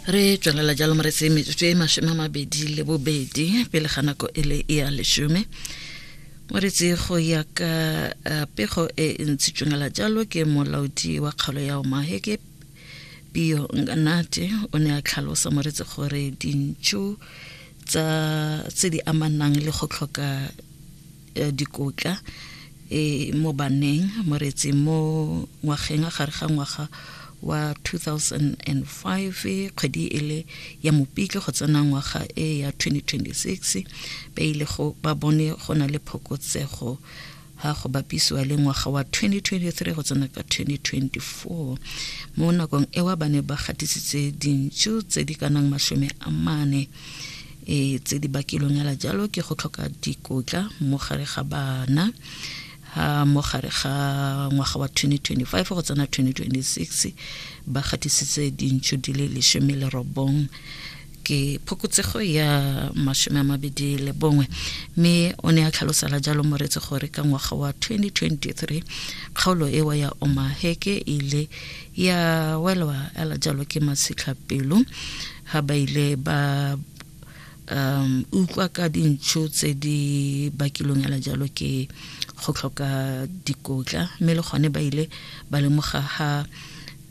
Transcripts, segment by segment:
re tswelela jalo moretse metsotso e masome a mabedi le bobedi pele ga nako e le e ya lesome moretse go ya ka eh, pego e e ntshitswengela jalo ke molaodi wa kgaolo ya omahe ke pio nganate o ne a tlhalosa moretse gore dintšhu tsa tse di amanang le go tlhoka eh, dikotla e mo baneng moretse mo ngwageng a gare ga ngwaga wa 2005 kgwedi e le ya mopitlo go tsena ngwaga e ya 2026 ba ile go ba bone go na le phokotsego ha go bapisiwa le ngwaga wa 2023 go tsena ka 2024 mo nakong ewa ba ne ba gatisitse dintšu tse di kanang masome a mane E tse di bakilweng hela jalo ke go tlhoka dikotla mo gare ga bana ha mo gare ga ngwaga wa 2025 go tsena 2026 ba gatisitse dintšho di le lesome le robong ke phokotsego ya masome a mabedi le bongwe mme o ne a tlhalosela jalo moretse gore ka ngwaga wa 2023 kgaolo ewa ya omaheke e ile ya welwa ela jalo ke matshitlhapelo ha ba ile ba um utlwa ka dintšho tse di bakilweng ala jalo ke go tlhoka dikotla mme le gone ba ile ba lemoga ha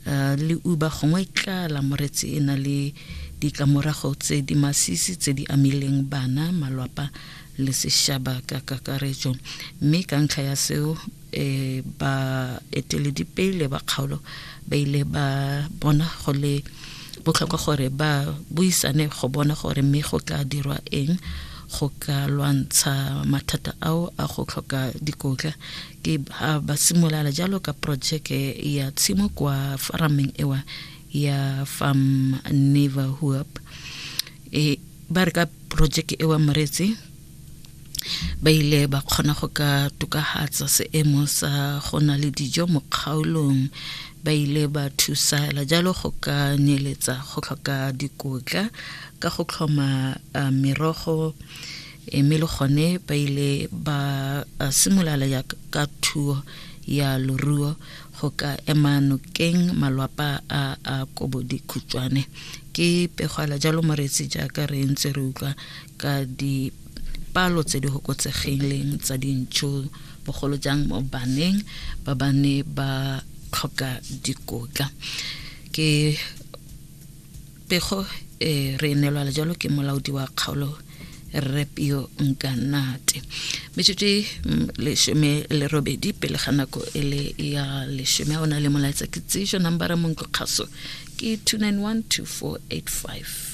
uh, le uba gongwe tlala moretsi e na le ditlamorago tse di masisi tse di amileng bana malwapa le sešaba ka kakaretso mme ka ntlha ya seo e ba eteledipele ba kgaolo ba ile ba bona go le botlhokwa gore ba buisane go bona gore mme go tla dirwa eng go ka lwantsha mathata ao a go tlhoka dikotla ke ha ba simolala jalo ka projeke ya tshimo kwa farameng ewa ya farm neverhoop e ba re ka projeke ewa moretsi ba ile ba kgona go ka tokagatsa seemo sa go na le dijo mo kgaolong ba ile ba thusala jalo go ka neeletsa go tlhoka dikotla ka go tlhoma uh, merogo eh, mme le gone ba ile ba uh, simolala ya ka thuo ya loruo go ka ema nokeng malwapa a a kobo dikhutšwane ke pegwala jalo moretsi jaaka re ntse re utlwa ka dipalo tse di hokotsegileng tsa dintšo bogolo jang mo baneng ba ba ne ba tlhoka dikotla ke pego e re nelwala jalo ke molaodi wa kgaolo rre pio nkanate metsotso e mm, lesome le robedi pele ga nako e le ya lesome a o na le molaetsa ke tseiso nambara monklo kgaso ke 291 2485